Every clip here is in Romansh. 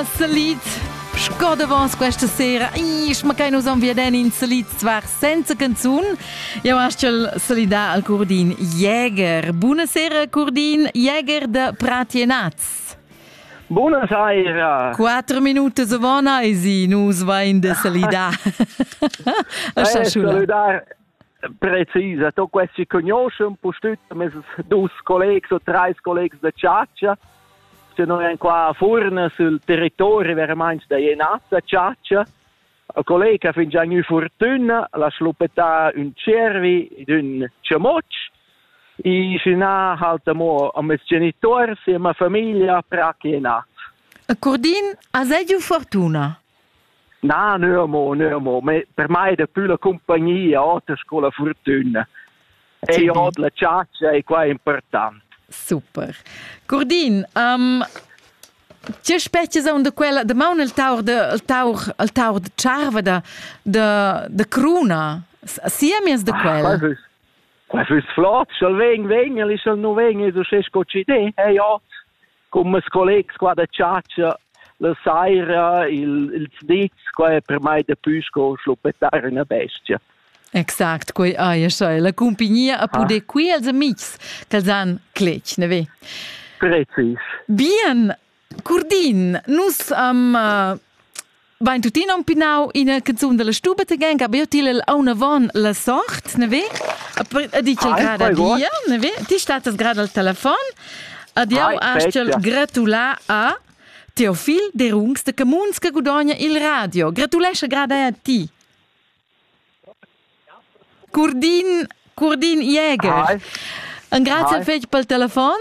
Salit Sco davos questa sera Isch, ma che nus am veden in salit zwar senza canzun. Jau astgel salidar al Curdin Jäger. Buonasera Curdin Jäger de Pratienaz. Buonasera. Quattro minuti savona e si nus vain de salidar. saludar precisa to questi conoscen pustüt mes dus collegs o treis collegs da chatscha se noi en qua a furna sul territori veramente da Jenazza chatscha a collega fin già nu fortuna la schluppetta un cervi d'un chamotsch e fina halta mo a mes genitori e ma famiglia pra che nat. A Cordin has giu fortuna? Na, nö amo, nö amo, me, per mai è dapü la cumpagnia oter sco la fortüna. E ot la chatscha e qua è important. Super. Curdin, um, tge spezias on da quella da maun al taur de al taur al taur de charva da de de cruna siamies da quella ah, quas is flot sch'el vegn vegn el is el nu vegn es uschè sco ci de eh ja Con mes collegs qua da chatscha la saira il, ils nits qua è per mai daplü sco schluppetar üna bestia. Exact, quei ei escha la cumpignia a puder ah. qui als amics ch'als han cletg, ne ve? Precis. Bien, Curdin, nus am uh, Bain tuttina un pinau ina canzun dalla stuba tegan che abbiu til auna von la sort, ne ve? A di che grada dia, ne ve? Ti statas grada al telefon. Adieu astgel gratulà a Teofil de Rungs de Camuns che gudogna il radio. Gratulesce grada a ti. Curdin, Curdin Jäger. Hi. Engraziel Hi. fetg pel telefon.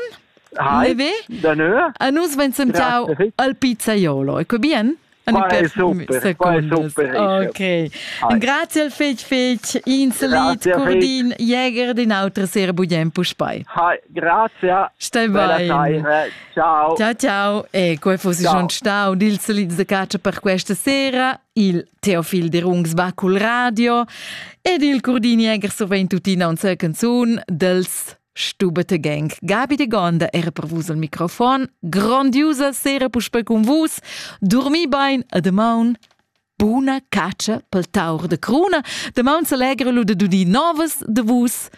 Hi. Danö. A nus vain sentiau al pizzaiolo. Ecco bien? Qua è super, qua è super. Ok. Grazie fetg fetg ins lied Curdin Jäger den auter sehr budem puspei. Hi, grazie. Stai bene. Ciao. Ciao ciao. E come fossi già stau dils lieds de caccia per questa sera Il Teofil Derungs va cul radio ed il Curdiniegher sovent tuttina unsa canzun dels Stubete Gang. Gabi de Gonda era per vus al microfon. Grandiusa sera puspe con vus. Dormi bein a de maun. Buna caccia pel taur de cruna. De maun s'allegra lu de dudi novas de vus.